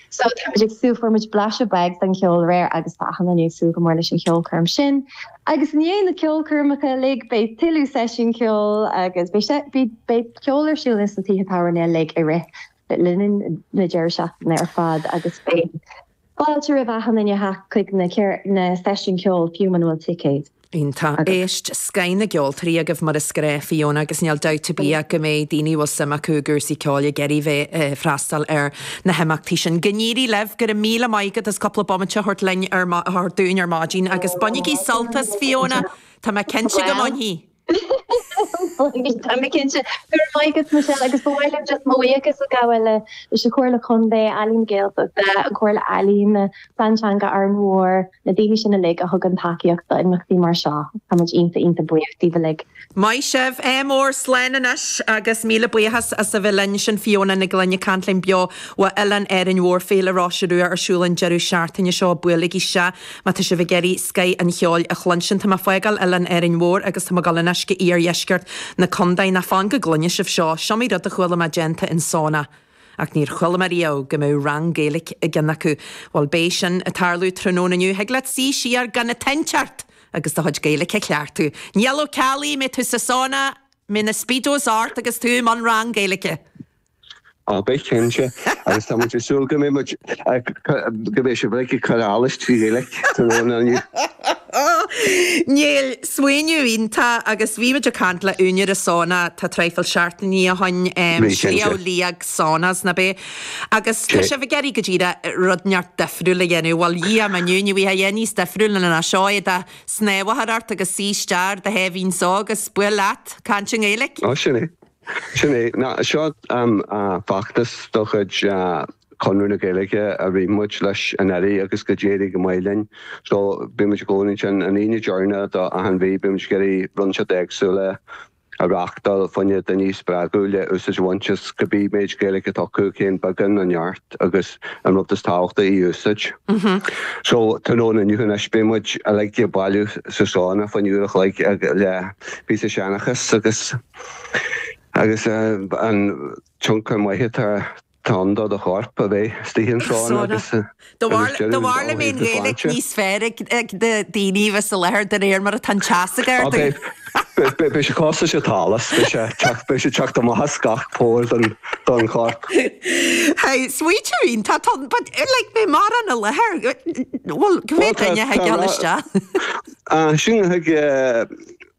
So táimid ag súil, fuair muid blaiseadh beag den cheol aréir agus tá achan duine ag súil go mór leis an cheolchoirm sin. Agus i ndiaidh na ceolchoirmeacha uilig beidh tuilleadh seisiún ceoil agus beidh ceol ar siúl ins na tithe tábhairne uilig i rith na deireadh seachtaine ar fad agus beidh Fáilte roimh achan duine a theacht chuig na seisiúin ceoil fiú muna bhfuil ticéad d'éigse scoth na gceoltóirí agaibh mar a déarfá Fiona agus níl dabht ar bith ach go mbeidh daoine a bhfuil suim acu i gcúrsaí ceoil ag iarraidh bheith ag freastal ar na himeachtaí sin. Go n-éirí libh! Go raibh míle maith agat as cúpla bomaite a thabhairt linn ar thabhairt dúinn ar maidin agus bainigí sult as Fiona tá mé cinnte go mbainfidh! Tá mé cinnte. Go raibh maith agat Michelle agus ba mhaith liom just mo bhuíochas a ghabháil le leis an Chomhairle Contae, Ealaín na Gaeltachta, an Chomhairle Ealaíon, na Plean Teanga Árainn Mhór, na daoine sin uilig a thugann tacaíocht do imeachtaí mar seo. Táimid iontach iontach buíoch díbh uilig. Maith sibh. Go mór, slán anois agus míle buíochas as a bheith linn. Sin Fiona Nic Gloinn ag caint linn beo ó oileán Árainn Mhór. Féile Róise Rua ar siúl an deireadh seachtaine seo, buailigí isteach! Má tá sibh ag iarraidh scoth an cheoil a chluinsint, tá mé fágáil Oileán Árainn Mhór agus tá mé goil in aice iardheisceart na condae. Ná fan go gcluine sibh seo. S'iomaí rud a chuala mé déanta i sauna. Ach níor chuala mé riamh go mbeadh rang Gaeilic i gceann acu. Bhuel, beidh sin ag tarlú tráthnóna inniu. Thig leat suí siar gan aon tointe ort! agus do chuid Gaeilic a chleachtú. Niall Ó Ceallaigh, beidh tú sa sauna, beidh na Speedos ort agus tú i mbun rang Gaeilice. Ó, beidh cinnte. Agus tá muid ag súil go mbeidh muid, go mbeidh sibh ag cur allais trí Ghaeilge tráthnóna inniu. Níl, smaoineamh iontach agus bhí muid ag caint le úinéir an sauna tá traidhfil seachtainní ó shoin, Bhí cinnte. Sliabh Liag Saunas nárbh é. Agus tá sibh ag iarraidh go díreach rud ineacht difriúil a dhéanamh. Bhuel Dhia m'inniu, ní thig a dhéanamh níos difriúla ná seo éide snámha a chur ort agus suigh isteach ar do sháimhín só agus bí leat ag caint i nGaeilge. Ó, sin é. Sin é. Seo feachtas de chuid Chonradh na Gaeilge a rith muid leis anuraidh agus d'éirigh go maith linn. So bíonn muid i gcónaí ansin. An Aoine deirneach do achan mhí bíonn muid ag iarraidh imeachtaí éagsúla a reachtáil fá choinne daoine a spreagadh le úsáid a bhaint as cibé méid Gaeilge atá acu féin beagán nó neart agus an rud is tábhachtaí í úsáid. So tráthnóna inniu anois beidh muid uilig ag bailiú sa sauna fá choinne uair a chloig le píosa seanchas agus. Agus an tionchar maith atá ann do do chorp, a bheith istigh ann an tráthnóna agus D'fhéadfadh Gaeilic níos fearr ag daoine a bheith sa láthair de réir mar atá an teas ag ardú. Beidh sé cosúil leis an allas, beidh sé ag teacht amach as gach póir don chorp. Hey, smaoitiúín, tá tá, but like na máthar, i láthair, bhuel, cé mhéad duine a thig isteach? Sin a thig.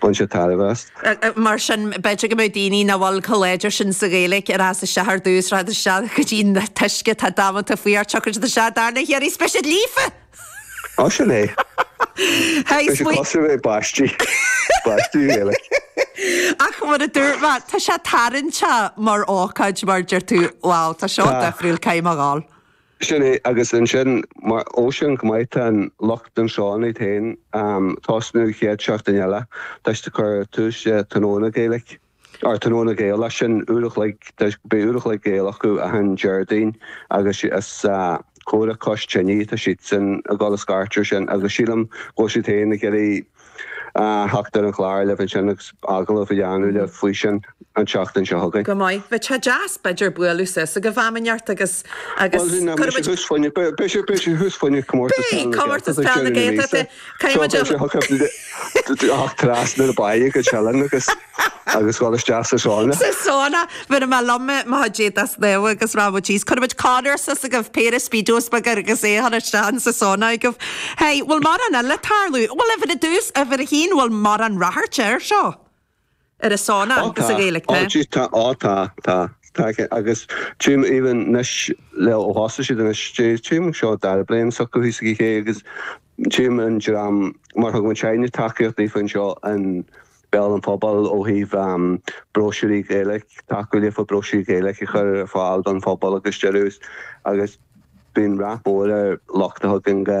Bain sé tairbhe as. Mar sin, b'fhéidir go mbeadh daoine nach bhfuil chomh láidir sin sa Ghaeilge in ann teacht isteach ar dtús teacht isteach go dtí na tuisce atá damanta faoi ar dtiocfadh siad isteach dara huair seisean líofa! Ó sin é. Hey, B'fhéidir smaoineamh. cosúil le baisti. Baisti Ghaeilge. Ach mar a dúirt mé, tá sé tarraingteach mar ócáid mar deir tú. Wow, tá seo Tá. difriúil, caithfidh mé a ghabháil. Sin é, agus ansin, mar, ó is an-go maith, tá lucht an sauna féin ag tosú an chéad seachtain eile tá siad ag cur tús le tráthnóna Gaeilge, or tráthnóna Gaeilge, sin uair a chloig, beidh uair a chloig Gaeilge acu achan Déardaoin agus is Comhrá Cois Tine atá siadsan ag dul a scairteadh ar sin agus sílim go bhfuil siad féin ag iarraidh theacht ar an chlár libh ansin agus agallamh a dhéanamh leat faoi sin an tseachtain seo chugainn. Go maith. Bheadh sé deas b'fhéidir bualadh suas agaibh am inteacht agus Bhuel sin é, beidh sé thuas fá dheoidh, beidh sé, beidh sé thuas fá dheoidh Comórtas Peile na Gaeltachta ag deireadh na míosa so beidh sé thuas, ach trasna na bá go Teileann agus. agus dhul isteach sa sauna. Sa sauna! Mura mbeadh liom é, má thig siad isteach agus rá, Bhuel, jeez, cuirimid Conor suas agaibh, péire Speedos beaga agus é a chur isteach in sa sauna agaibh. Hey, bhfuil mórán eile ag tarlú? Bhuel, ar dtús, uimhir a haon, bhfuil mórán ráchairt air seo ar an sauna Á tá, is a Ghaeilic á mé. jeez, tá, á tá, tá, tá, agus tá mé ag déanamh anois ó thosaigh siad anois, jeez, tá mé ag déanamh seo an dara bliain acu thíos ag an chéidh agus tá mé ag déanamh an dream mar thug muidinne tacaíocht daofa anseo in Béal an Phobail ó thaobh bróisiúir Ghaeilge, tacú leofa bróisiúir Ghaeilge a chur ar fáil don phobal agus d'eile agus bíonn rath mór air, ach tá againn go